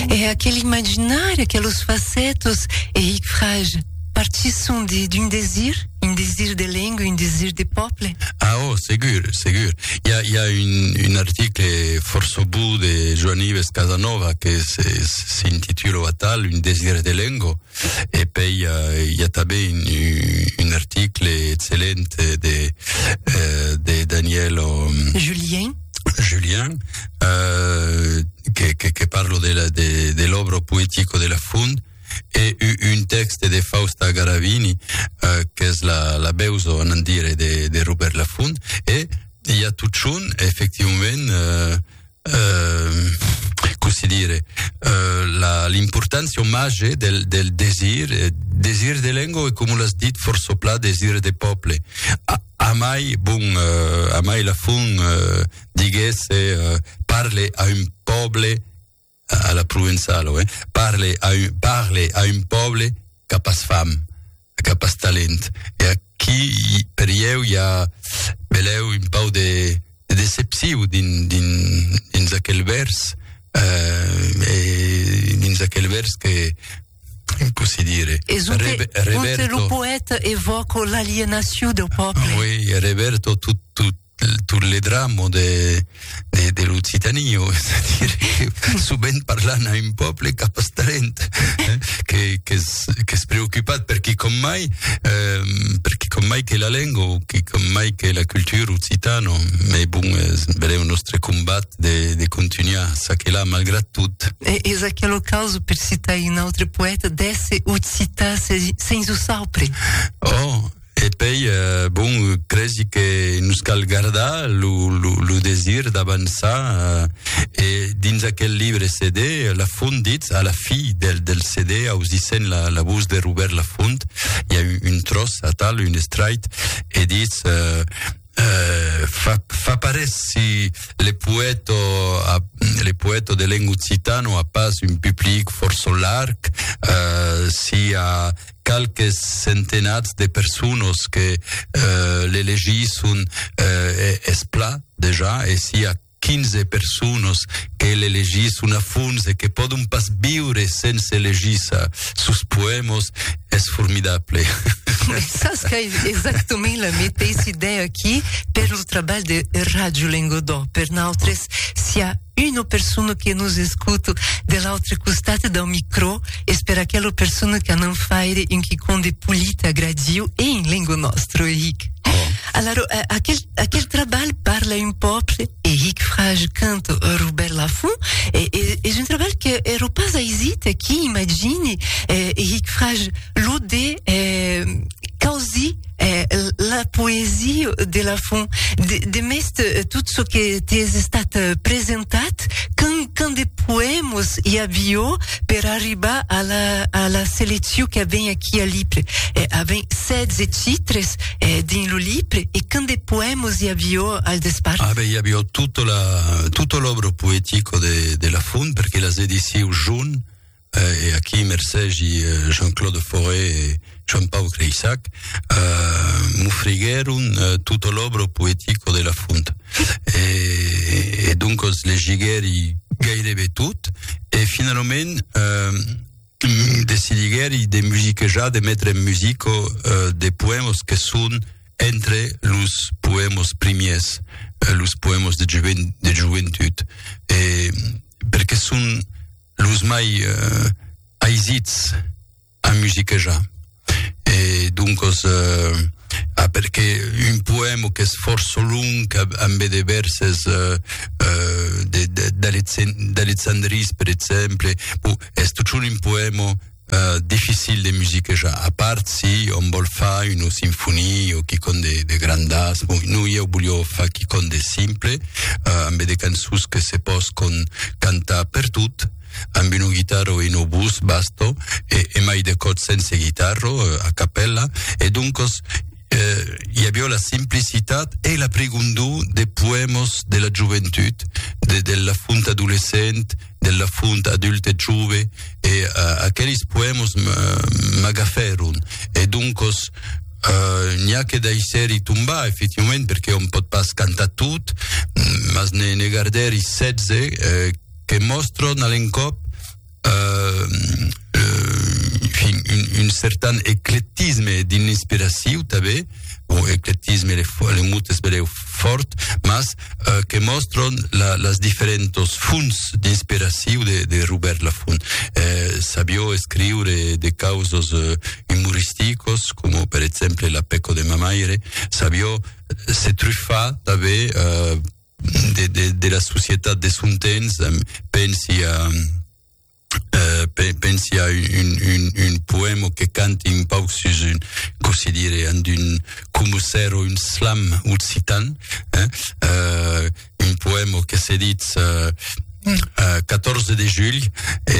E aquel imaginar, aquelos facetos e hic frage, partisson d'un desir, un desir de lenga, un desir de pòble? Ah, oh, segur, segur. I a, i a un, un article fòrça bou de Joan Ives Casanova que s'intitula atal, Un desir de lenga, e pei i a, i a tanben un, un article excellent de, de Daniel... Julien. Julien, euh, que, que, que parlo de, la, de, de l'obro poético de la fund, e un text de Fausta Garavini, euh, qu'es la, la beuso, en dire, de, de Robert Lafond, e hi ha tot son, efectivament, euh, euh, com se dire, euh, l'importància homatge del, del desir, desir de lengua, e com l'has dit forço pla, desir de poble. Ah, Amai bon, amai la fon diguèsse parle a un pòble a la provençala oi, parle a un parle a un pòble qu'a pas fam, qu'a pas talent. E aquí per ieu i a belèu un pau de decepciu dins dins dins aquel vèrs, eh e dins aquel vèrs que dire. E zut Rebe, Reberto, lo poète evoca l'alienacion del pòble. Ah, oui, Reberto, tot, tot, tot le drame de, de, de l'Occitanie, c'est-à-dire que sovint parlant a un pòble cap talent, eh, que, que, es, que es preocupat per qui com mai, eh, per qui com mai que la lenga, qui com mai que la cultura occitana, mais bon, eh, breu, nostre combat, de, de continuar ça que là, malgrat tout. E, és aquí lo caso per citar un autre poète, d'esse occitan sens o saupre. Oh, e pei, euh, bon, cresi que nos cal gardar lo, lo, lo desir d'avançar, euh, e dins aquel libre CD, Lafont ditz, a la fi del, del CD, ausissent la, la vos de Robèrt Lafont, i a un, un tròç atal, un estrait, e ditz, euh, fa, fa parés si le poèto, a, le poèto de lengo occitano a pas un public forço larg, uh, si a qualques centenats de personos que uh, le legisson uh, es pla dejà, e si a 15 personas que l'elegisson a fons e que pòdon pas viure sens elegir ça. Sos poèmas es formidable. Sas qu'ai exactament la meteissa idèa aquí per lo trabalh de Ràdio Lengodò. Per nautres, si a una persona que nos escuta de l'autre costat dau micrò, es per aquela persona que anam faire un quicòm de polit, agradiu e en lenga nòstra, Eric. Alara, aquel Aquel trabalh parla un pòble e hic fraj cant Robèrt Lafont e es un trabalh que ero pas aisit aquí imagini e hic fraj lo de causi la poesia de Lafont de mest tot çò que t'es estat presentat cant de poèmas i a viò per arribar a la seleccion que avèm aquí a l'IPLE avèm 16 titres eh, dins lo lip, e quin de poèmos i avió al despart? Ah, ben, i avió tota la, tota l'òbra poetico de, de la Font, perque las edissiu Jun, eh, e aquí mercegi eh, Jean-Claude Fauré e Joan Pau Creissac, eh, m'ofriguèron eh, tota l'òbra poetico de la Font. E, e doncas legiguèri gairebe tot, e finalament, eh, decidiguèri de musiquejar, de metre en musica de poèmas que son entre los poèmas primièrs, los poèmas de jovent, de joventut. E, perque son los mai aisits a musiquejar. e doncos eh, a perqué un poèmo qu'es fòrç long ambe de vèrses eh, eh de d'Alexandris per exemple, bon es totjorn un poèmo eh dificil de musiquejar, a part si òm vòl far una sinfonia o quicòm de de grandàs, bon non ieu volió far quicòm de simple eh ambe de cançons que se pòscon cantar pertot, amb un guitarro e un obús basto, e, e mai de còps sense guitarro, a capèla, e doncos eh, i avió la simplicitat e la prigondor de poèmos de la joventut, de, de la font adolescent, de la font adulte e jove, e eh, aqueles poèmos m'agafèron. E doncos, eh, n'i a que daissèri tombar, efectivament, perque òm pòt pas cantar tot, mas ne, ne gardèri 16, eh, que mòstron a l'encòp un certan eclectisme dins l'inspiraciu tanben, bon, eclectisme le, le mot es breu fòrt, mas euh, que mòstron la, las diferentos fonts d'inspiraciu de, de Robert Lafont. Eh, sabió escriure de causos eh, humoristicos, com per exemple La peco de ma maire, sabió se truffar tanben eh, de, de, de la societat de son temps, pensi a, eh, pensi a un, un, un poema que canti un pauc sus un, com se dire, en d'un, com ser un slam occitan, eh, eh, un poema que se dit eh, 14 de julh, e,